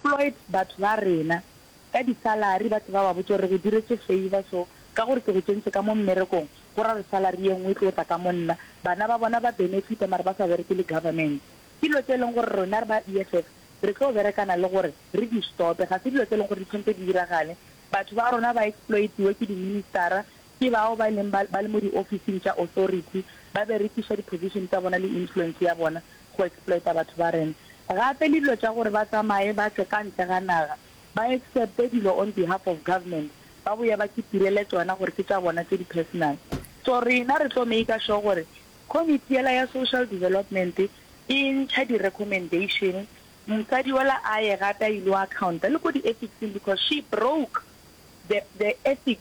Floyd batho ba rena ka di salary ba tseba ba botša gore re go diretše favour so ka gore ke go tšentše ka mo mmerekong go ra re salary ye nngwe e tlo tla ka mo nna bana ba bona ba benefita mare ba sa bereke le government ke dilo tše e leng gore rena re ba EFF re tlo berekana le gore re di stope ga se dilo tse e leng gore di tshwantse di diragale batho ba rona ba exploitiwe ke di ministera Ke bao ba e leng ba ba le mo diofising tša authority, ba berekiša di-position tša bona le influence ya bona go exploita batho ba rena. Gape le dilo tša gore ba tsamaye ba tle ka ntle ga naga, ba accepte dilo on behalf of government, ba boye ba kitirele tšona gore ke tša bona tše di-personal. So rena re tlo maker sure gore committee yela ya social development e ntšha di-recommendation, mosadi yola a ye gape a il'o accounta le ko di-ethics-ing because she broke the the ethics.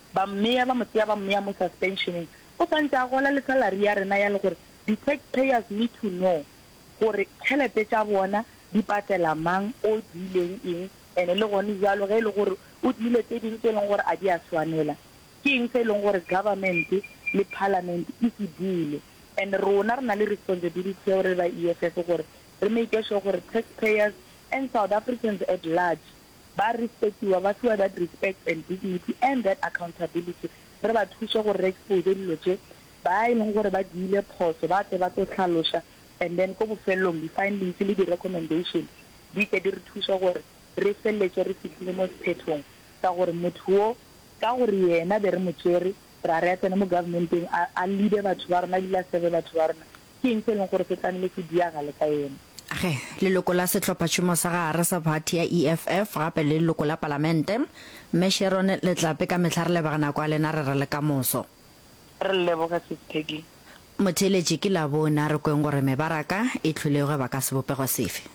Ba mmea ba mo tseya ba mmea mo suspensioneng o swantše a gola le salary ya rena ya le gore di tax payers need to know gore tšhelete tša bona di patela mang o diileng eng and le gone bjalo ge e le gore o diile tse ding tše e leng gore a di a swanela ke eng se e leng gore government le parliament e se bule and rona re na le responsibility seo re ba EFF gore re make sure gore tax payers and South Africans at large ba respectiwa, ba fiwa that respect and dignity and that accountability, re ba thuse gore re expose dilo tše, ba e leng gore ba diile phoso ba tle ba tlo hlaloša and then ko bofelelong di findings le di recommendation di tle di re thuse gore re feleletše re fihlile mo sephethong sa gore motho wo ka gore yena be re mo tšere ra re a tsene mo government-eng a a leader batho ba rona ebile a serve batho ba rona. Ke eng se e leng gore se tlamehile se diagale ka yena? Ge leloko la Sehlophatšhomo sa Gare sa Phathi ya EFF gape le leloko la Palamente, Mme Sharon Letlape ka mehla re lebega nako ya lena re re le kamoso. Re leboge Sis Peggy. Motheeletši ke Labone a re kweng gore mebaraka e hlwilego e baka sebopego sefe?